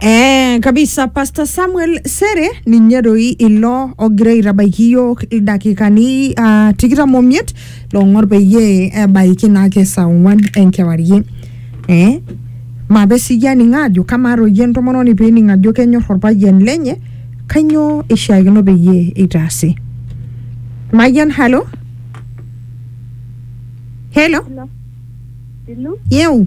Eh, kabisa pastor samuel sere ninye doi ilo ogira aitabaiki yiok ildakikani uh, tikitam omiet long'or peyie ebaiki naake saa ong'uan enkewarie eh? mape siyie aning ajo kamaa toi entomononi pening ajo kenyor orpayian lenye kanyoo ishiakino peyie itaasi mayian halo helo Hello. yeu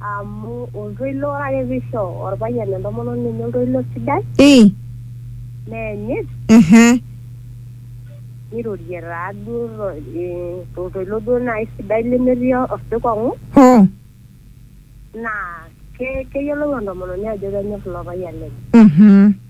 Amu oltoilo, ore ake peisho orpayian entomononi enye oltoilo sidai, Ii. neenyit, Ehe. nirorie taa duo to- eh, toltoilo duo nai sidai lemetii osikong'u, Hoo. naa ke- keyiolou entomononi ajo kenyor ilo payian lenye. Mhm.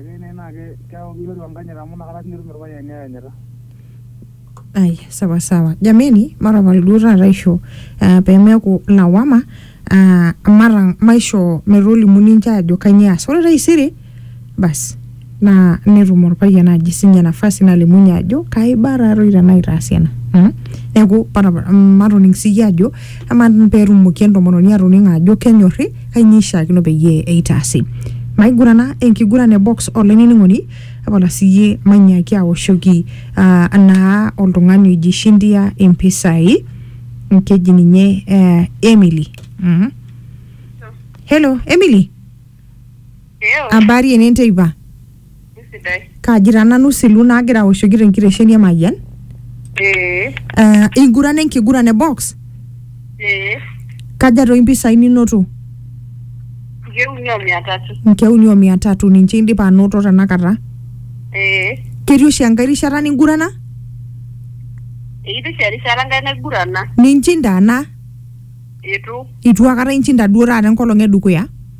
Ekeyie naa keeku kiroru enkanyit amu nakata sii etum irpayiani ayanyita. Ai, sawa sawa. Jameni, matapal duo taata aisho uh, pemeeku lawama, uh, mata maishoo metolimu ninche ajo kanyioo eas. Ore taisere, bas naa netum orpayian naji sinye nafasi nalimunye ajo kaiba tatoi tenaa itaasa ena. Mm? Neeku matapal, matoning siyie ajo amaa petumoki entomononi atoning ajo kenyorri, kainyoo eishaakino peyie eitaasi. Maigurana enkiguran e box olainining'oni tapala siyie manyaaki awoshoki uh, naa oltung'ani oji shindia impisai keji ninye uh, Emily mm -hmm. Hello Emily, Ew. habari enenteipa? Sidai. Kaaji taa nanu Silu naagira aoshoki te nkitesheni e Mayian. Ee. Uh, ingurana enkiguran e box? Ee. Kaja toi mpisai ninoto? Nkeek uni o mia tatu. Nkeek uni o mia tatu ninche indipa anoto tenakata. Ee. Ketii oshi enkae rishata ningurana? Ekitii oshi erishata enkae naigurana. Ninchind ana? Eitu. Eitu akata inchinda duo taata enkolong e dukuya?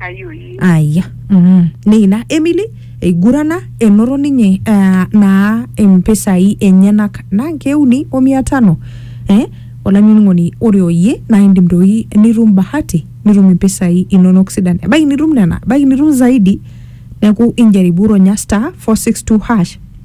ayoyi aya mm. neina emily eigurana enoto ninye ah, naa impisai enyenak naa nkeuni o mia tano eh? olainining'oni ore oyie naa indim doi nitum bahati nitum impisai inonok sidan ebaiki nitum nena ebaiki nitum zaidi neeku injaribu ronya star 462 hash